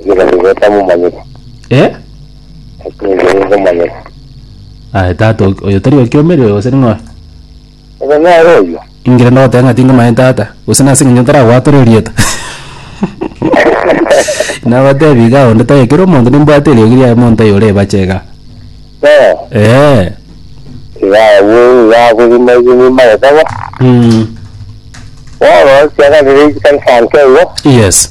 Ekero nigo tamomanyete, Eh? ekero nigo nkomanyete. Aye tata ok- oyo tari okiomeri oyo gose ning'o? Ebe nere oyio. Ingire nogoteba ng'a tingomanya tata, gose nase eng'encho ntaragwatore erieta. Nagotebi iga onde taiyo kera omonto nimbwate eriogi riaye monto aye ore ebache iga. Eh, Eh. iga abwo iga akorima ase enyomba agataba. Mm. Bono ase akabere iga nsanke igo, Yes.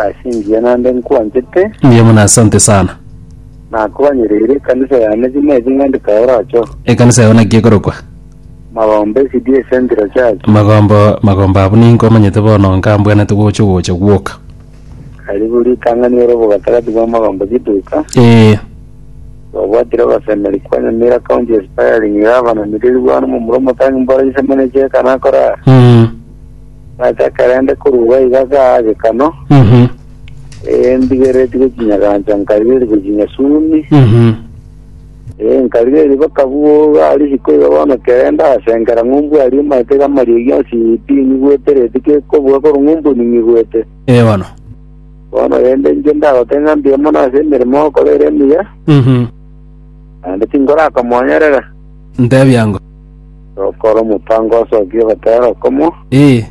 Ase engiya naende nkwanchete. Mbuya mono, asante sana. Nakoanyereire ekanisa yane buna ebi ng'andika oracho. Ekanisa yao naki ekorokwa? Magombe CDA Central Church. Magombo magombo abwo ninko omanyete bono nkambwanete gocha gocha gwoka. Karibu ritang'ani ore obogatagati bwa Magombe Giduka. Ee. Twabwatire abasemeri kwa Nyamira County Aspiring Gavana Miriru Bwana Momura Omotangi Mboro Isemo ne Cheka Nakorara. Mm. Ase ekerende korwa iga igakaa agekano, Mhm. ee, ndigeretie gochinya gancha, nkarigeria gochinya sumi, Mhm. ee, nkarigeria bakabuga risiko iga bono ekerende asengera ng'umbu aria omanyete iga amarie gionsi pi nyigwete reti kekobuga korwa ng'umbu ninyigwete. Ee bono. Bono rende inche ndagoteba ng'a mbuya mono ase emeremo ogokora ere emiya, Mhm. naende tinkorakomonyerera. Ntebia ngo. Tokora omotango ase oko ogotera okomo. Ee,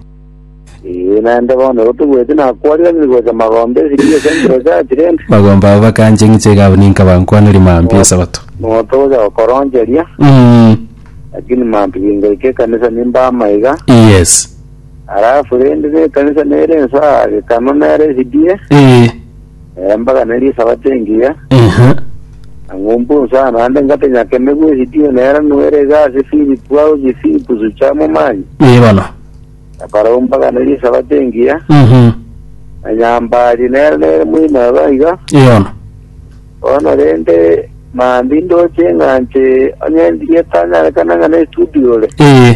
Ee, naende bono igo togweti nakwarire ng'iri gocha magombe ase chiiro chia embura ase Atirene. magombe abo bakancha eng'icha igabo ninka bankwaneri mambi esabato. Nabo togocha gokoroncheria, Mm, lakini mantu gingaika ekanisa nimba amaiga. yes. Alafu rende na ekanisa nere ensa, gekano nere esidie. Ee, Embaga neri esabato engiya, Ehe. na ng'umbu nsa naende ngatenya kemegwa esitio nera nwere iga ase Filipu aochie Filipu sucha momanye. Ee bono. Na Farao mbaga neri esabato engiya, Mhm. na nyambari nera nere moino iga iga. Ee bono. Bono rende, mambia indoche ng'anche onye ndigetanyarekana ng'a nestudiore. Ee.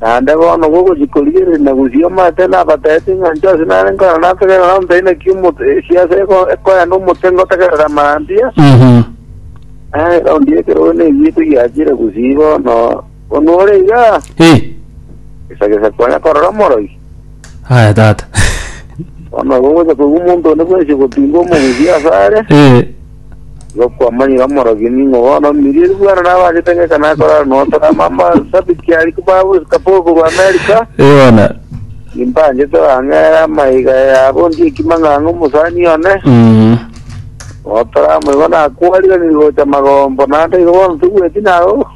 Naende bono gogochia korigereria na gosioma ase nabateete ng'a inche onsi nare nkore nategerere nabo ntari na kiuma siase ekoenda omote ngotegerere amarambia, na eraundi y'ekerogo neyio etigiachire gusii bono. Bono ore igaa, Eh, gesa gesa konya korora omoroi. Aya tata. Bono igo ngocha koigwa omonto onde bwensi gotinga omogusi asare, Eh, igo kwamanyire omorogi ning'o bono omirie eri bwana nabanchete ng'eka nakorara notora mama sabiti aria babu kapoko korwa America, eh bono. nimbanchete bang'ere amaiga yabo ndie ekima ng'ang'a omosani one, Mm. notora amo igo nakwarire nigo gocha magombo naende igo bono togweti nago.